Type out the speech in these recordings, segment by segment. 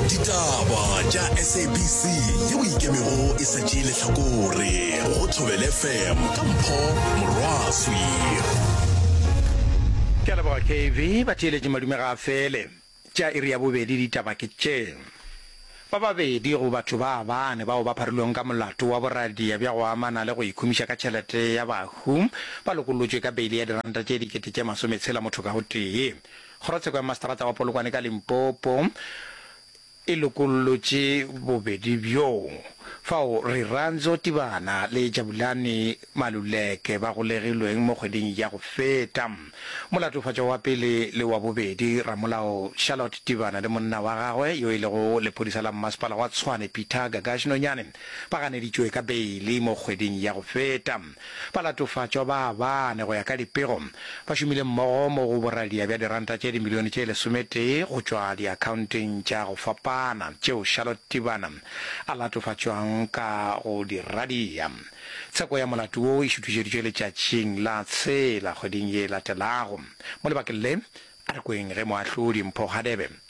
ditaba tša sabc yeo ikemego e sa tšee lehlakore go thobele fm ka mpho morwaswi ke a leboga kv ba theeletše madume ga a fele tša iri ya bobedi ditaba ke tše ba babedi go batho ba bane bao ba pharilweng ka molato wa boradia bja go amana le go ikhumiša ka tšhelete ya bahu ba lokolotšwe ka beile ya diranta tše dikete tše masometshela motho ka gotee Kgorotsheko ya Maseterata wa Polokwane ka Limpopo e lokollotše bobedi bjo, fao Rirantso Tibana le Jabulani Maluleke ba golegilweng mo kgweding ya go feta. Molatofatšwa wa pele le wa bobedi, Ramolao Charlotte Tibana le monna wa gagwe yo e lego lephodisa la mmasepala wa Tshwane, Peter Gagash Nonyane, Ba ganeditšwe ka beili mo kgweding ya go feta. Ba latofatšwa ba bane go ya ka dipego. Ba šomile mmogo mo go boradia bja diranta tše dimilione tše lesometee go tšwa diakhaonteng tša go fapana tšeo Charlotte Tibana a latofatšwang ka go di radia. Tsheko ya molato wo e šuthišeditšwe letšatšing la tshela kgweding ye e latelago. Mo lebakeng le, a re kweng ge Moahlodi Mpho Hadebe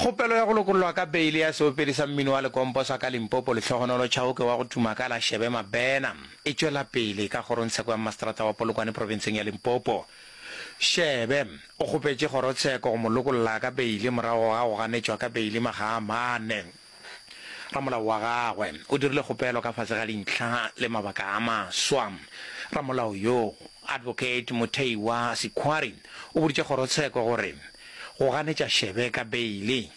Kgopelo ya go lokollwa ka beile ya seopedi sa mmino wa lekompo sa ka Limpopo Lehlohonolo Chauke wa go tuma ka la Shebe Mabena e tšwela pele ka kgorongtsheko ya mmaseterata wa Polokwane profenseng ya Limpopo. Shebe o kgopetše kgorotsheko go mo lokolla ka beile morago ga go ganetšwa ka beile makga a mane. Ramolao wa gagwe o dirile kgopelo ka fase ga dintlha le mabaka a maswa. Ramolao yo, Advocate Mutheiwa Sikhwari, o boditše kgorotsheko gore go ganetša Shebe ka beile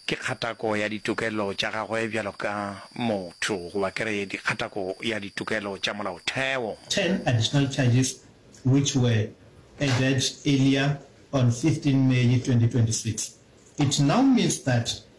ke kgatako ya ditokelo tša gagwe bjalo ka motho, goba ke re kgatako ya ditokelo tša molaotheo. Ten additional charges which were added earlier on fifteen May twenty twenty six. It now means that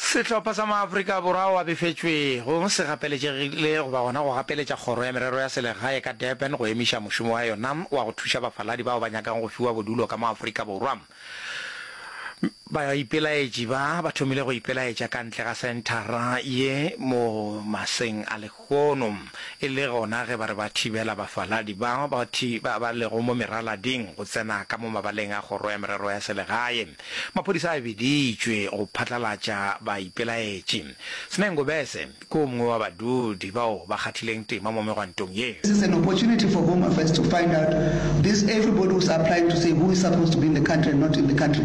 Sehlopha sa Maafrika Borwa ao a befetšwego se gapeletšegile go ba gona go gapeletša Kgoro ya Merero ya Selegae ka Durban go emiša mošomo wa yona wa go thuša bafaladi bao ba nyakang go fiwa bodulo ka mo Afrika Borwa. Baipelaetši ba ba thomile go ipelaetša ka ntle ga senthara ye mo maseng a Gono, e le gona ge ba re ba thibela bafaladi ba ba ba lego mo meralading go tsena ka mo mabaleng a Kgoro ya Merero ya Selegae, maphodisa a biditšwe go phatlalatša baipelaetši. Sneh Ngobese ke o mongwe wa badudi bao ba kgathileng tema mo megwantong ye. This is an opportunity for Home Affairs to find out this everybody who's applying to say who is supposed to be in the country and not in the country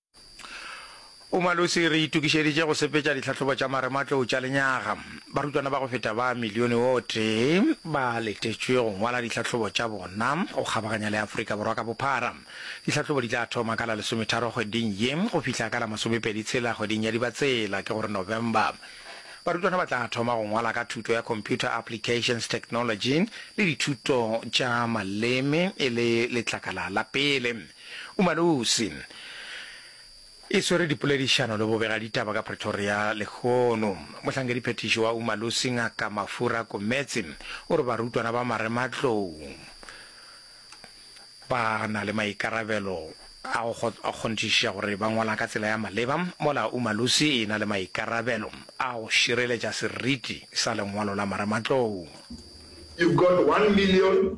O Malusi re itokišeditše go sepetša ditlhahlobo tša marematlou tša lenyaga. Barutwana ba go feta ba milione o tee ba letetšwe go ngwala ditlhahlobo tša bona go kgabaganya le Afrika Borwa ka bophara. Ditlhahlobo di tla thoma ka la lesometharo kgweding ye go fihla ka la masomepedi tshela kgweding ya Dibatsela, ke gore November. Barutwana ba tla thoma go ngwala ka thuto ya Computer Applications Technology le dithuto tša maleme e le letlakala la pele. Umalusi e swere dipoledišano le bobegaditaba ka Pretoria lehono. Mohlankediphethiši wa Umalusi Ngaka Mafura Kometse o re barutwana ba marematlou ba na le maikarabelo a go kgonthišiša gore ba ngwala ka tsela ya maleba mola Umalusi e na le maikarabelo a go šireletša seriti sa lengwalo la marematlou. You've got one million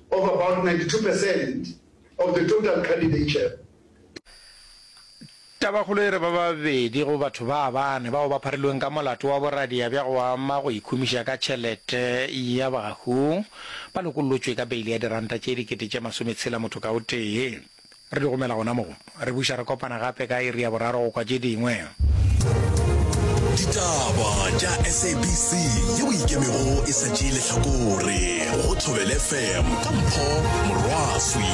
of about ninety two percent of the total candidature. Tabakgolo e re ba babedi go batho ba bane bao ba pharilweng ka molato wa boradia bja go ama go ikhumiša ka tšhelete ya bahu ba lokollotšwe ka beile ya diranta tše dikete tše masometshela motho ka o tee. Re di gomela gona mo. Re buša re kopana gape ka iri ya boraro go kwa tše dingwe. Ditaba tša SABC yeo e ikemego e sa tšee lehlakore go Thobele FM ka Mpho Morwaswi.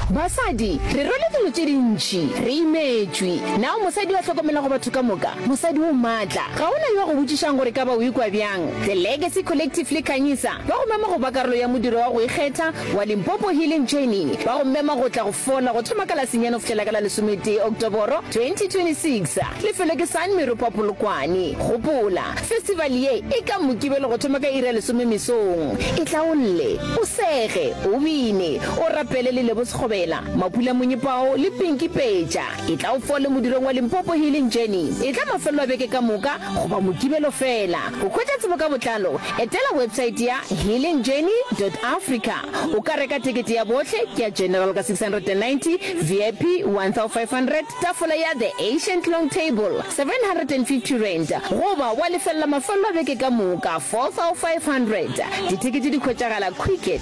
Basadi re rwele dilo tše dintši, re imetšwe. Na o mosadi yo a hlokomelago batho ka moka? Mosadi o maatla. Ga go na yo a go botšišago gore e ka ba o ikwa bjang. The Legacy Collective le Khanyisa ba go mema go ba karolo ya modiro wa go ikgetha, wa Limpopo Healing Journey ba go mema go tla go fola go thoma ka la senyane go fihlela ka la lesometee Oktoboro 2026. Lefelo ke San Meropa Polokwane. Gopola, festival ye e ka Mokibelo go thoma ka iri ya lesome mesong. E hlaolle, o sege, o bine, o rapele le Lebo Sekgobela, Mapula Monyepao le Pinky Peja. Etla o fole modirong wa Limpopo Healing Journey. Etla mafelelo a beke ka moka goba Mokibelo feela. Go hwetša tsebo ka botlalo, etela websaete ya healingjourney dot africa. O ka reka tekete ya bohle, ke ya General ka 690, VIP 1500, tafola ya The Ancient Long Table R750, goba wa lefelela mafelelo a beke ka moka R4500. Ditekete di hwetšagala Quicket.